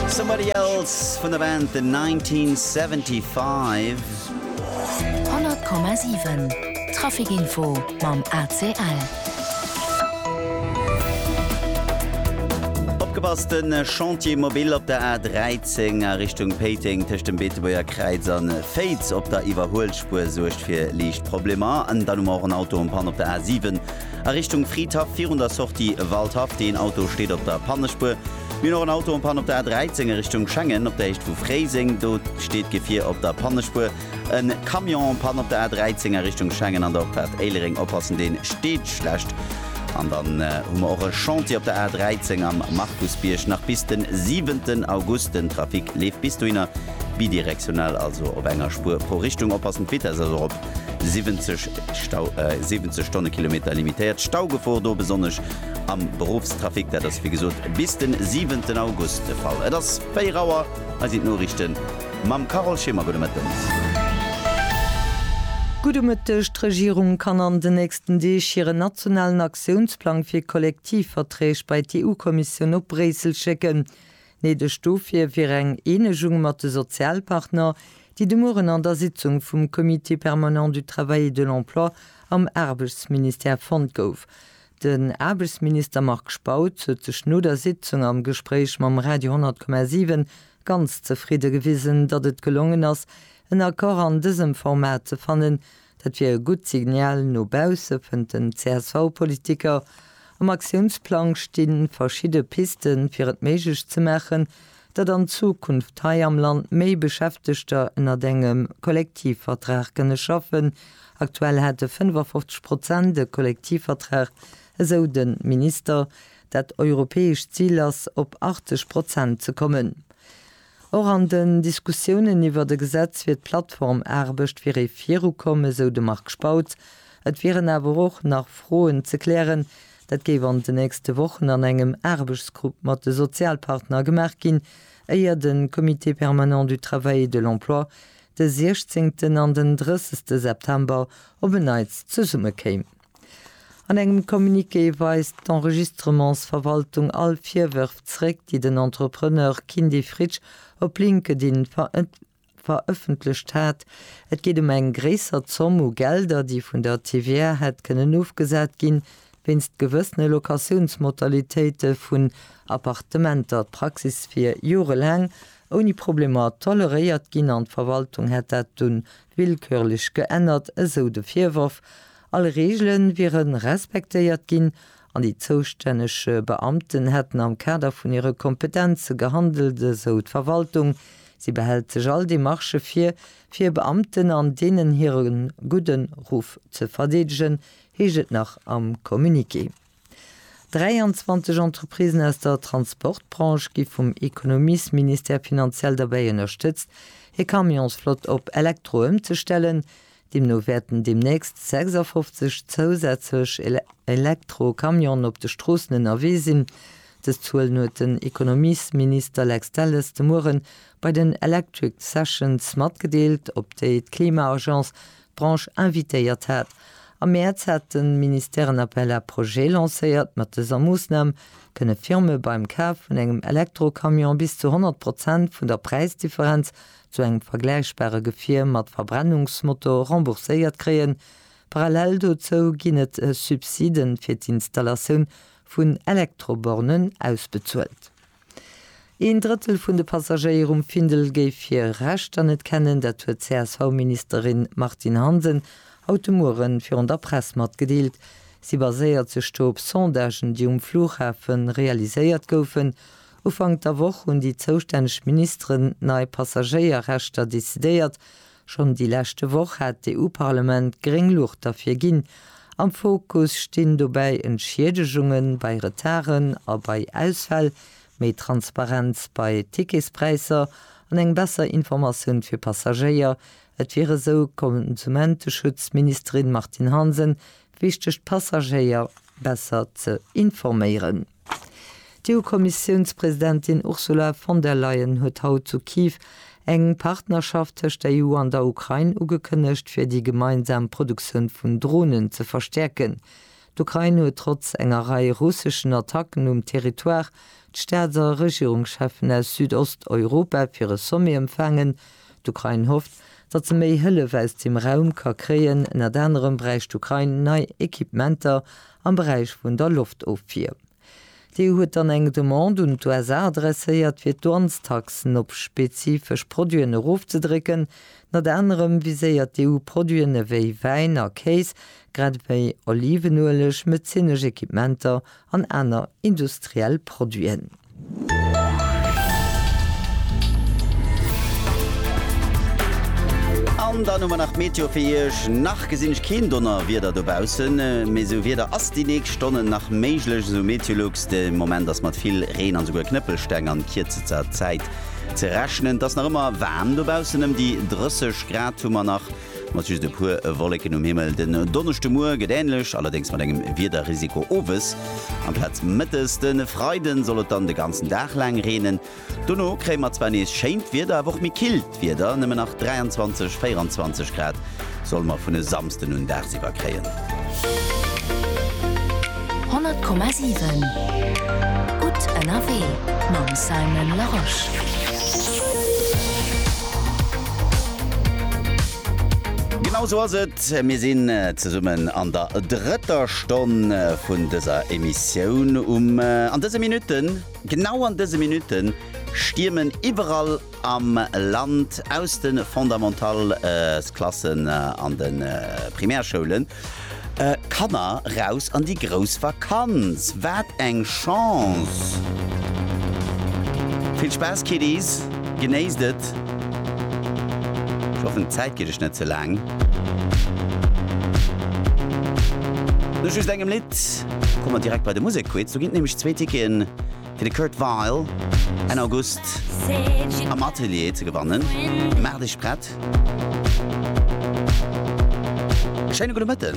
Somebody Else vun der Band The 1975. 100,7 Trafikinfo mam ACL. Opgepasst, den Chantier Mobile op der A13 a Richtung Péiteng tëscht dem Beetebuerger Kräiz an Féiz op der Iwwerhuelspuer suergt fir liicht Problemer. An dann hu mer och en Auto en Panne op der A7. a Richtung Fridhaff virun der Sortie Waldhaff. Deen Auto steet op der Pannespuer. Mir hunn och en Auto en panne op der A13 a Richtung Schengen op der Héicht vu Fréiseng. Do steet d'Gefier op der Pannespuer. E Camion en panne op der A13 a Richtung Schengen an der Opfahrt Éilereng. Oppassen, dee steet schlecht. An dann hu mer och e Chantier op der A13 am Markusbierg nach bis den siwenten August. Den Trafic leeft bis dohinner bidirektional, also op enger Spuer pro Richtung. Oppassen, d'Vitess ass erop. 70 Stau, äh, 70 Stonnekilometer limitéiert Staugefor do besonnesch am Berufstrafic, dat ass wie gesot bis den 7. August de Fall. Et ass 4 Auer, hei sinn d'Noriichten mam Carole Schimmer. Gudde Mëtten. Gudde Mëtteg. D'Regierung kann an den nächsten Deeg hiren nationalen Aktiounsplang fir Kollektivverträg bei d'EU-Kommissioun op Bréissel schécken. Néideg dofir wier eng Eenegung mat de Sozialpartner, déi de Mueren an der Sitzung vum Comité permanent du travail et de l'emploi am Aarbechtsministère fonnt gouf. Den Aarbechtsminister Marc Spautz huet sech no der Sitzung am Gespréich mam Radio 10,7 ganz zefridde gewisen, datt et gelongen ass, en Accord an dësem Format ze fannen, Dat wier e gutt Signal no bausse, fënnt den CSV-Politiker. Am Aktiounsplang sti verschidde Pisten, fir et méiglech ze maachen, datt an Zukunft hei am Land méi Beschäftegter ënnert engem Kollektivvertrag kënne schaffen. Aktuell hätte 55 Prozent e Kollektivvertrag, esou de Minister. Dat europäescht Zil ass, op 80 Prozent ze kommen. Och an den Diskussiounen iwwert e Gesetz fir d'Plattformaarbecht wier ee virukomm, esou de Marc Spautz. Et wieren awer och nach Froen ze klären. Dat géif an den nächste Wochen an engem Aarbechtsgrupp mat de Sozialpartner gemaach ginn, éier de Comité permanent du travail et de l'emploi de siechzéngten an den drëssegste September op en Neits zesummekéim. An engem Communiqué weist d'Enregistrementsverwaltung all Virwërf zréck, déi den Entrepreneur Kindy Fritsch op LinkedIn verëffentlecht hat. Et geet ëm eng gréisser Zomm u Gelder, déi vun der TVA hätt kënnen ofgesat ginn, wéinst gewëssene Locatiounsmodalitéite vun Appartementer. D'Praxis wier jorelaang ouni Problemer toleréiert ginn an d'Verwaltung hätt dat dunn Willkürlech geännert, esou de Virworf. All Reegele wiere respektéiert ginn an déi zoustänneg Beamten hätten am Kader vun hire Kompetenze gehandelt, esou d'Verwaltung. Si behält sech all Demarchë vir, fir Beamten an deenen hire gudden Ruff ze verdeedegen, heescht et nach am Communiqué. 23 Entreprisen aus der Transportbranche gi vum Ekonomiesministère finanziell derbäi ënnerstëtzt, hir Camionsflott op Elektro ëmzestellen. Deemno wäerten deemnächst 56 zousätzlech Elektro-Camionen op de Stroossen ënnerwee sinn. Dës Zuelen huet den Ekonomiesminister Lex Delles de Muere bei den Electric Sessions matgedeelt, op déi d'Klima-Agence D'Branche invitéiert hat. Am Mäerz hat de Ministère en Appel à projets lancéiert. Mat dëser Moossnam kënne Firme beim Kaf vun engem Elektrocamion bis zu 100 Prozent vun der Präisdifferenz zu engem vergläichbare Gefier mat Verbrennungsmotor rembourséiert kréien. Parallel dozou ginn et Subsiden fir d'Installatioun vun Elektrobornen ausbezuelt. Een Drëttel vun de Passagéier um Findel géif hir Rechter net kennen. Dat huet d'CSV-Ministerin Martine Hansen haut de Muere virun der Press matgedeelt. Si baséiert sech do op Sondagen, déi um Flughafe realiséiert goufen. Ufank der Woch hunn déi zoustänneg Ministeren nei Passagéierrechter decidéiert. Schonn déi leschte Woch hat d'EU-Parlement gréng Luucht derfir ginn. Am Fokus stinn dobäi Entschiedegunge bei Retarden a bei Ausfäll, méi Transparenz bei Ticketspräisser an eng besser Informatioun fir Passagéier. Et wier esou d'Konsumenteschutzministerin Martine Hansen wichteg d'Passagéier besser ze informéieren. D'EU-Kommissiounspresidentin Ursula von der Leyen huet haut zu Kyiv eng Partnerschaft tëscht der EU an der Ukrain ugekënnegt, fir déi gemeinsam Produktioun vun Dronen ze verstäerken. D'Ukrain huet trotz enger Rei russeschen Attacken um Territoire d'Staats a Regierungscheffen aus Südosteuropa fir e Sommet empfaangen, D'Ukrain hofft, datt se méi Hëllef aus dem Raum ka kréien, ënnert anerem bräicht d'Ukrain nei Equipementer am Beräich vun der Loftofwier. D'EU huet dann eng Demande un d'USA adresséiert, fir d'Douanestaxen op spezifesch Produiten erofzedrécken. Ënnert anerem viséiert d'EU Produiten ewéi Wäin a Kéis, grad ewéi Olivenueleg, medezinesch Equipementer an aner industriell Produiten. An dann hu mer nach d'Meteo fir Iech. Nach gesinn ech keen Donnerwieder dobaussen, mee esou Wieder ass déi nächst Stonnen nach méiglech, esou Meteolux. De Moment ass mat vill Reen an esouguer Knëppelsteng an kierzester Zäit ze rechnen. Et ass nach ëmmer waarm dobaussen, ëm déi 30 Grad hu mer nach. Mat just e puer Wolleken um Himmel. Den Donneschdemuer gëtt änlech, allerdéngs mat engem Wiederrisiko owes amplaz mëttes. De Freide soll et dann de ganzen Dag laang reenen. Dono kréie mer zwar nees schéint Wieder, awer och méi killt Wieder, nëmmen nach 23, 24 Grad solle mer vun e Samsden un dagsiwwer kréien. 100,7 Gutt ënnerwee mam Simon Larosche. Genau esou ass et, mir sinn zesummen an der drëtter Stonn vun dëser Emissioun um. An dëse Minutten, genau an dëse Minutten stiermen iwwerall. am Land aus de Fondamentalsklassen an de Primärschoulen Kanner raus an déi grouss Vakanz. Wat eng Chance! Vill Spaass Kiddies, genéisst et! Ech hoffen d'Zäit geet iech net ze laang. No just engem Lidd komme mer direkt bei de Musekquiz, do ginn et nämlech zwee Ticketen. fir de Kurt Weill Enn August am Atelier ze gewannen. Maach dech prett! Schéine gudde Mëtten!